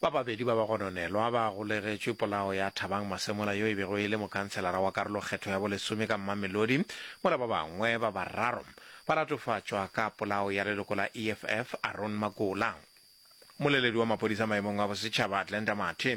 Ba babedi ba bagononelwa ba golegetšwe polao ya Thabang Masemola yo e bego e le mokhanselara wa karolokgetho ya bolesome ka Mamelodi, mola ba bangwe ba bararo ba latofatšwa ka polao ya leloko la EFF Aaron Makola. Mmoleledi wa maphodisa maemong a bosetšhaba Glenda Mathe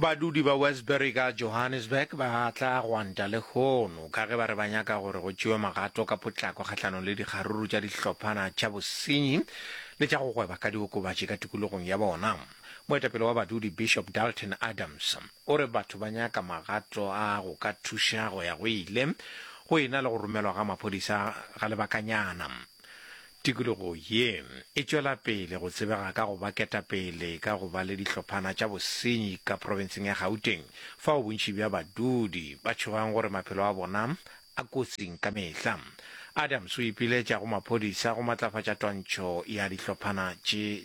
Badudi ba Westbury ka Johannesburg ba tla gwanta lehono ka ge ba re ba nyaka gore go tšewe magato ka potlako kgahlanong le dikgaruru tša dihlophana tša bosenyi le tša go gweba ka diokobatši ka tikologong ya bona. Moetapele wa badudi Bishop Dalton Adams o re batho ba nyaka magato a go ka thuša go ya go ile go ena le go romelwa ga maphodisa ga lebakanyana. Tikologo ye e tšwela pele go tsebega ka go ba ketapele ka go ba le dihlophana tša bosenyi ka profenseng ya Gauteng fao bontši bja badudi ba tšhogang gore maphelo a bona a kotsing ka mehla. Adams o ipiletša go maphodisa go matlafatša twantšho ya dihlophana tše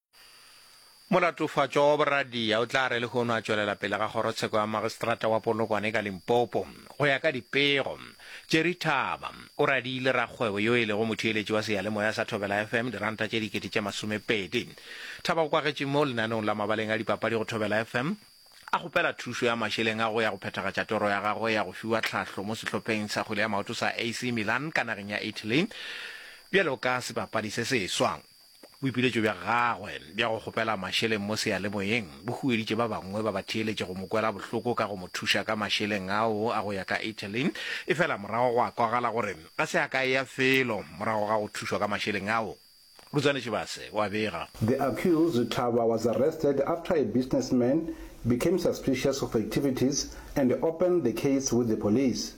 Molatofatšwa wa boradia o tla re lehono a tšwelela pele ga kgorotsheko ya magistrata wa Polokwane ka Limpopo. Go ya ka dipego, Jerry Thaba o radiile rakgwebo yo e lego motheeletši wa seyalemoya sa Thobela FM diranta tše dikete tše masomepedi. Thaba o kwagetše mo lenaneong la mabaleng a dipapadi go Thobela FM a kgopela thušo ya mašeleng a go ya go phethagatša toro ya gagwe ya go fiwa tlhahlo mo sehlopheng sa kgwele ya maoto sa AC Milan ka nageng ya Italy bjalo ka sebapadi se seswa. Boipiletšo bja gagwe bja go kgopela mašeleng mo seyalemoyeng bo hueditše ba bangwe ba batheeletši go mo kwela bohloko ka go mo thuša ka mašeleng ao a go ya ka Italy, efela morago gwa kwagala gore a se a ka eya felo morago ga go thušwa ka mašeleng ao. Rutsane Tšhibase o a bega. The accused, Thaba, was arrested after a businessman became suspicious of activities and opened the case with the police.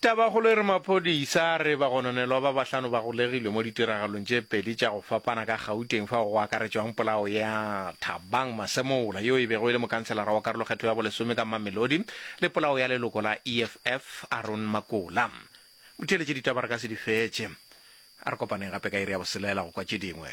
Tabakgolo e re maphodisa a re bagononelwa ba bahlano ba golegilwe mo ditiragalong tše pedi tša go fapana ka Gauteng fao go akaretšwang polao ya Thabang Masemola yo e bego e le mokhanselara wa karolokgetho ya bolesome ka Mamelodi le polao ya leloko la EFF Aaron Makola. Motheeletše ditaba re ka se di fetše. A re kopaneng gape ka iri ya boselela go kwa tše dingwe.